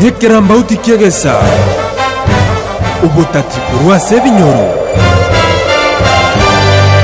Nekerambauti ki'egesa, obotaki korwa ase ebinyoro.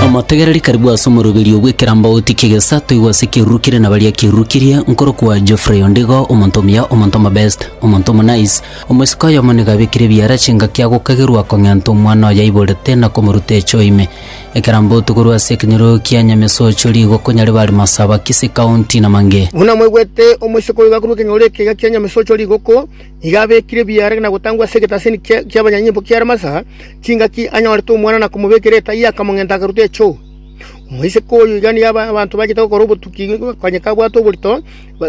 Omotegereri karibu ase omoroberio bw'ekerambauti ki'egesa toigwe ase ekeruru kere na baria ekeruru kirie, nkorokwa Geoffrey Ondigo, omonto omuya, omonto omobest, omonto omonaice, omoiseke oyomo nigo abekire ebiara chingaki agokagerwa kong'enta omwana oyaiborete na komoruta echo ime. Ekero mbotu korwa ase ekenyoro kia Nyamesocho, rigoko Nyaribari Masaba, Kisii County, na Mange. Buna mwaigwete, omosike oyoka korwa ekenyoro ekega kia Nyamesocho rigoko, nigo abekire ebiara na gotangwa ase egetasini ki'abanyanyimbo kia Ramasa, chingaki anyorete omwana na komobekera etaiyo akamong'enta akaruta echoo. Omoiseke oyo iga nigo abanto bachete gokora obotuki konya kabwate oborito,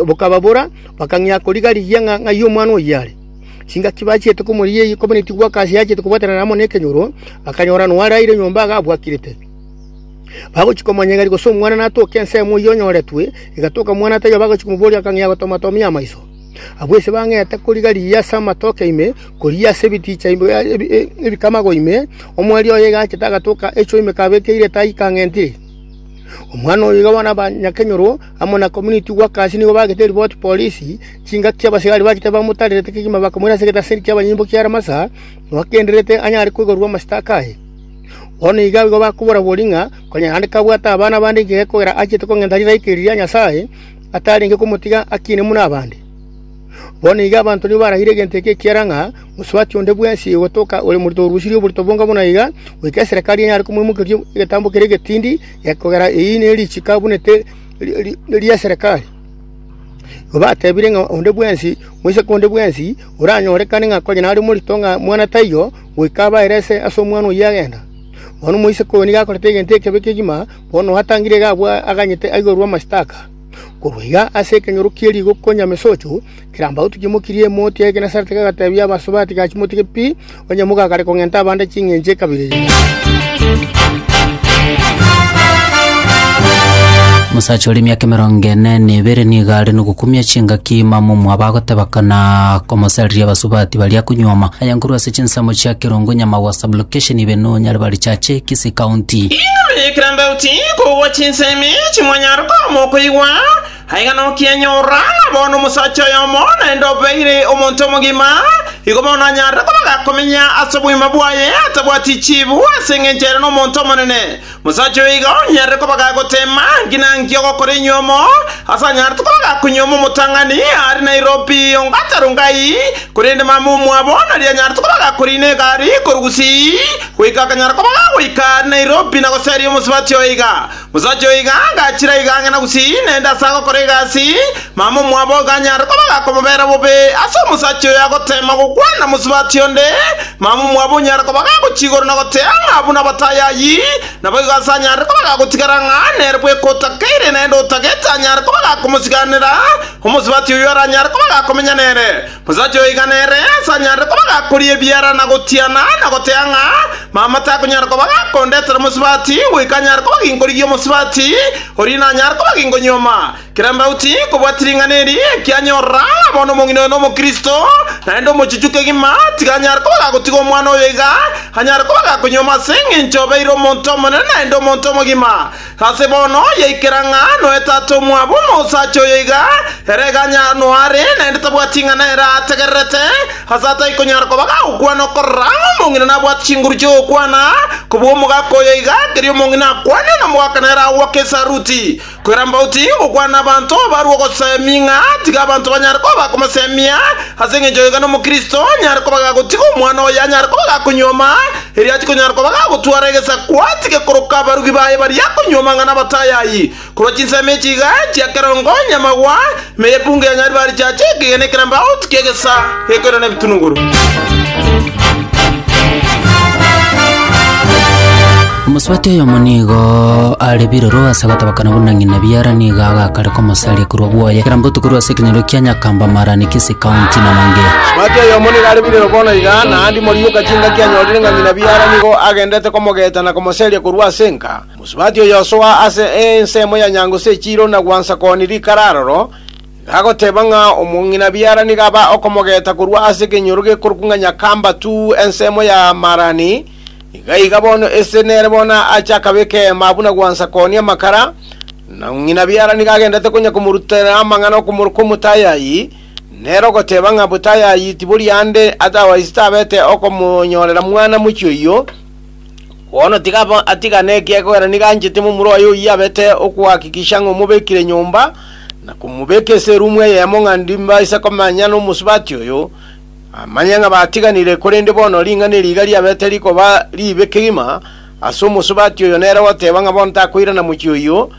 bokababora, bakang'ia koriga rigiya ng'a ng'ai omwana oyio are. Chingaki bachiete komoria eyio kobua netigwa aka ase achete kobwatanana amo nekenyoro, bakanyora nwaraire nyomba iga abwakirete. Bagochia komonyegeri gose omwana natoke ensemo eyio onyoretwe, egatoka omwana taiyo bagochia komoboria akang'ea gotomatomia amaiso. Abwo ise bang'ete koriga riya ase amatoke ime, koriya ase ebiticha ebikamago ime, omwari oye iga achete agatoka echo ime kabekeire tai kang'entire. Omwana oyo iga bono abanyakenyoro amo na Komuniti Wakaasi nigo bagete ripoti polisi, chingaki chi'abasigari bachete bamotarerete kegima bakamoira ase egetaseri ki'abanyimbo kia Ramasa, bagendererete anyare koigorerwa amasitaka aye. Bono iga abwo bakobora‐bori ng'a konya naende kabwate abana bande inche gekogera achiete kong'enta rilaika eri ria Nyasae, atarenge komotiga akiine buna abande. Bono iga abanto nigo baragire egento eke ekiara ng'a mosubati onde bwensi ogotoka ore morito orusirie oborito bonga buna iga, goika eserekari enyare komoimokeria egetambo keria egetindi, Ekogera eyio nerichiko abunete ri'eserekari, igo batebire ng'a onde bwensi, moiseke onde bwensi oranyorekane ng'a konya nare omorito ng'a mwana taiyo, goika abaere ase omwana oyio agenda. Bono moiseke oyo nigo akorete egento ekebe kegima, bono atangire iga aganyete aigerwe amashtaka. Korwa iga ase ekenyoro kie rigo konya mesocho, Kirambau titimokirie emoti ya Genesareti kagateebia abasobe ati, Gachi motige pi, onye mogakare kong'enta abande ching'encho ekabere eye. Omosacha ore emiaka emerongo ene na ebere nigo are nogokumia chingaki mamumu abagoteba kana komosariria abasubati baria konyuoma aye nkorwa ase chinsemo chia Kerongo Nyamagwa Sublocation ibe no Nyaribari Chache Kisii County. Inwe kirambau tikogwa chinsemi chimwanyara komokoigwa, Aiga nokianyorora, bono omosacha oyomo naende obeire omonto omogima, igo bono anyarire kobaga komenya ase obogima bwaye atabwati chiibu ase engencho ere nomonto omonene. Omosacha oyo iga onyarire kobaga goteema nki na nki ogokora enyuomo, ase anyarete kobaga konyuoma omotang'ani aare Nairobi onga Tarongai, korende mama omwabo nari anyarete kobaga koriina egari korwa Gusii goika akanyara kobaga goika aare Nairobi na goseria omosubati oyo iga. Omosacha oyo iga agachira iga ang'e na gusii, naende ase agokora egasi, mama omwabo iganyare koba gakomobera bobe. Ase omosacha oyo agoteema gokwana mosubati onde, mama omwabo onyare koba gagochia igoro na gotea ng'a buna batayayi. Naboigo ase anyare koba gagotigara ng'a nere bweka otakeire, naende otagete anyare koba gakomosiganera, omosubati oyio aranyare koba gakomenya nere. Omosacha oyo igana ere asanyarete koba gakoria ebiara na gotiana, na goteba ng'a mama takonyara koba gakondetera omosubati, goika anyare koba ginkorigia omosubati, oria nanyare koba ginkonyuoma. Kera mbao tinkobwati ring'ana eri, ekianyorora ng'a bono omong'ina oyo n'Omokristo, naende omochichu kegima, tiga anyare koba gagotiga omwana oyo iga anyare koba gakonyuoma ase engencho obeire omonto omonene naende omonto omogima. Ase bono yaikera ng'a noe tata omwabo na osacha oyo iga, ere eganya noare, naende tabwati ing'ana ere aategererete, ase atai konyara koba gagokwana okorora ng'a omong'ina nabwate chinguru chi'ogokwana, kobua omogaka oyo iga, keria omong'ina akwane, na omogaka nere agoaka esaruti. Kwera mbauti gokwana abanto barue ogosemia ng'a tiga abanto banyare koba bakomosemia, ase engencho oyo iga nomokristo nyare koba gagotiga omwana oye anyare koba gakonyuoma, Erio atikonyara koba gagotwara egesaku, atige koroka abarugi baye baria akonywa amang'ana abatayayi, korwa chinsemo echi iga chia kerongo onye amagwa, ime y'epungu ya Nyaribari chiacha ekegena ekeramba agotu ki'egesa gekoirana ebitunuguru. Omosubati oyomo nigo are biroro ase gotabakana buna ng'ina biara nigo agakare komosaria korwa bwoye, ekero mbotu korwa ase ekenyoro kia nyakamba maarane kese County na Mangea. Mati oyomo nigo are birero bono iga, na Andi moriboka chingaki anyorire ng'a ng'ina biara nigo agenderete komogeeta na komoseria korwa ase enka. Mosubati oyosoa ase ensemo ya nyango ase echiiro na gwansa kooni rikara aroro, iga agoteba ng'a omong'ina biara nigo aba okomogeeta korwa ase ekenyoro gekorokwa ng'a Nyakamba tu ensemo ya Marani, Iga iga bono ese nere bono ache akabeka eema buna gwansa koonia amakara, na ng'ina biara nigo agendete konya komorutera amang'ana okomoroka omotayayi, nere ogoteba ng'a botayayi tibori ande otherwise tabete okomonyorera mwana mochie oyio, bono tiga abo- atigane ekiagera nigo anchete momura oye oyio abete okohakikisha ng'a omobekire nyomba, na komobeka ase erumu eyemo ng'a ndimbaise komanya nomosubati oyo, Amanyang'a batiganire, korende bono ring'ana eri iga riabete rikoba ribe kegima ase omosubati oyo nere goteba ng'a bono takoirana mochie oyio,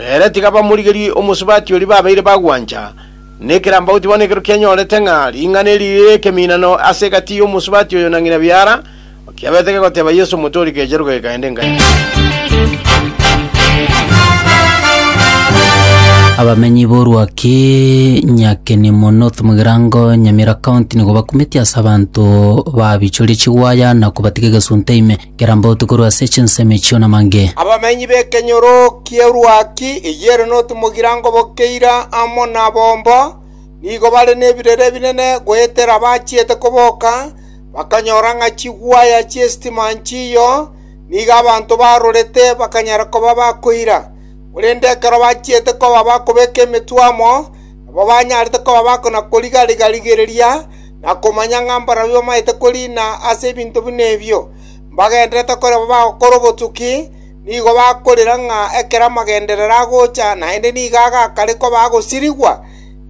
ere tiga bamorigerie omosubati oria babeire bagwancha. Nekerambauti bono ekero kianyorete ng'a ring'ana eri rire ekeminano ase egati y'omosubati oyo na ng'ina biara, Okiabete kegoteba Yesu omotwe oria kecheruka kekaenda engaini. Abamenyi b'orwaki Nyakenimo North Mugirango Nyamira County nigo bakumetie ase abanto babichoria chigwaya na kobatiga egesunte ime kerambauti korwa ase chinsemo echio namange. Abamenyi b'ekenyoro ki'erwaki eyere North Mugirango bokeira amo nabomba nigo bare nebirere ebinene goetera bachiete koboka bakanyora ng'a chigwaya chi'esitima nchiyo, nigo abanto barorete bakanyara koba bakoira. Korende ekero bachiete koba bakobeka emetwe amo, nabo banyarete koba bakona-koriga-riga rigereria, na komanya ng'a mbarabwo bamaete koriina ase ebinto buna ebio, mbagendererete korema bagokora obotuki, nigo bakorera ng'a ekero amagenderero agocha naende nigo agakare koba agosirigwa,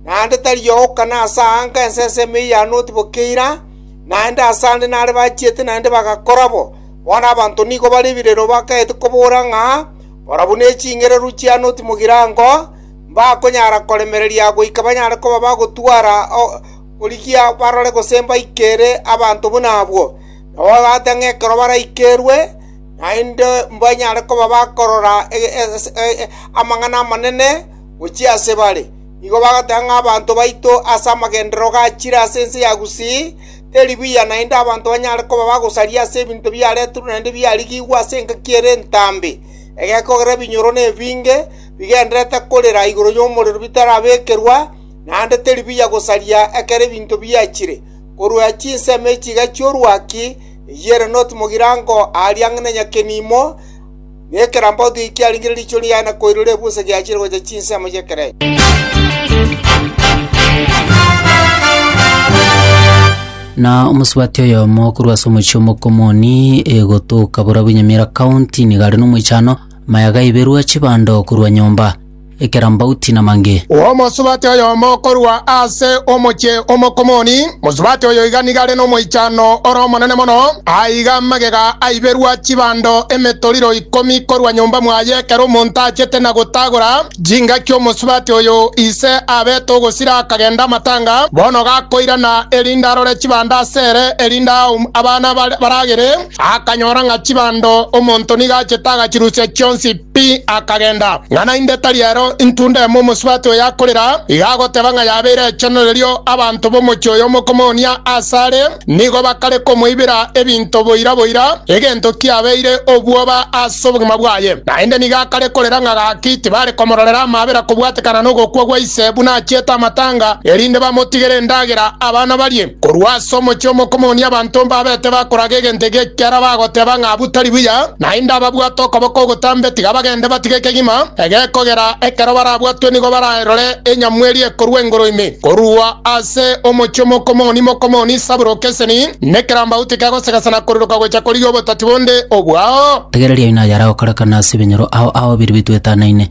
naende tari ogokana ase aa nka ense ensemo eyio ya Noti boka eira, naende ase ande nare bachiete naende bagakora bo. Bono abanto nigo bare ebirero bakaete kobora ng'a barabwo ne chingereru chia Noti mogirango mbakonyara koremereria goika banyare koba bagotwara origia barore gose mbaikere abanto buna abwo. Nao agaacha ng'a ekero baraikerwe naende mbanyare koba bakorora amang'ana amanene, gochia ase bare. Nigo bagateba ng'a abanto baito ase amagenderero gachire ase ense ya Gusii, teri buya naende abanto banyare koba bagosaria ase ebinto biareterwe naende biarigigwe ase engaki ere entambe, egekogera ebinyoro nebinge bigendererete korera igoro y'omorero bitarabekerwa, naende teri buya gosaria ekero ebinto biachire. Korwa chinsemo echi chi'orwaki, eyio ere noti mogirango aaria ang'e na nyakenimo, Nekerambe otige kiarenge riicho riaye na koirora ebusa giachire gocha chinsemo y'ekerecha. Na omosubati oyomo korwa ase omochie omokomoni egotoka Burabwanyamira County nigo are nomoichano, maya gaiberwa chibando korwa nyomba. ekerambauti na mange. Omosubati oyomo korwa ase omochie o Mokomoni, mosubati oyo iga nigo are nomoichano ore omonene mono, aiga amagega aiberwa chibando emetoriro ikomi korwa nyomba mwaye ekero omonto achete na gotagora chingaki omosubati oyo ise abete ogosira akagenda amatanga, bono gakoirana erinde arore chibando ase ere erinde aum abana baragere, akanyora ng'a chibando omonto nigo achete agachirusia chionsi. Pi akagenda, ng'a naende tari ero intunda emo omosubati oyo akorera, iga agoteba ng'a yabeire echano. Erio abanto b'omochie oyo omokomoonia aase are nigo bakare komoibera ebinto boira boira, egento kiabeire obwoba ase obogima bwaye. Naende nigo akare korera ng'a gaki tibare komororera amabera kobwatekana nogokwa gwa ise buna achiete amatanga, erinde bamotigere endagera abana barie. Korwa ase omochie omokomoonia abanto mbabete bakoraga egento eke ekiagera bagoteba ng'a abwo tari buya, naende ababwate okoboko ogotambe tiga bagende batige kegima ege kogera ekero barabwatwe nigo bararore enyamweri ekorua igoro ime. Korwa ase omochie omokomoonia mokomoonia ise aboro keseni, nekerambauti kegosegesa na koriroka gocha korigia obotati bonde obwao. Rigereria inayara gokorekana ase ebinyoro ao ao biria bitwetanaine,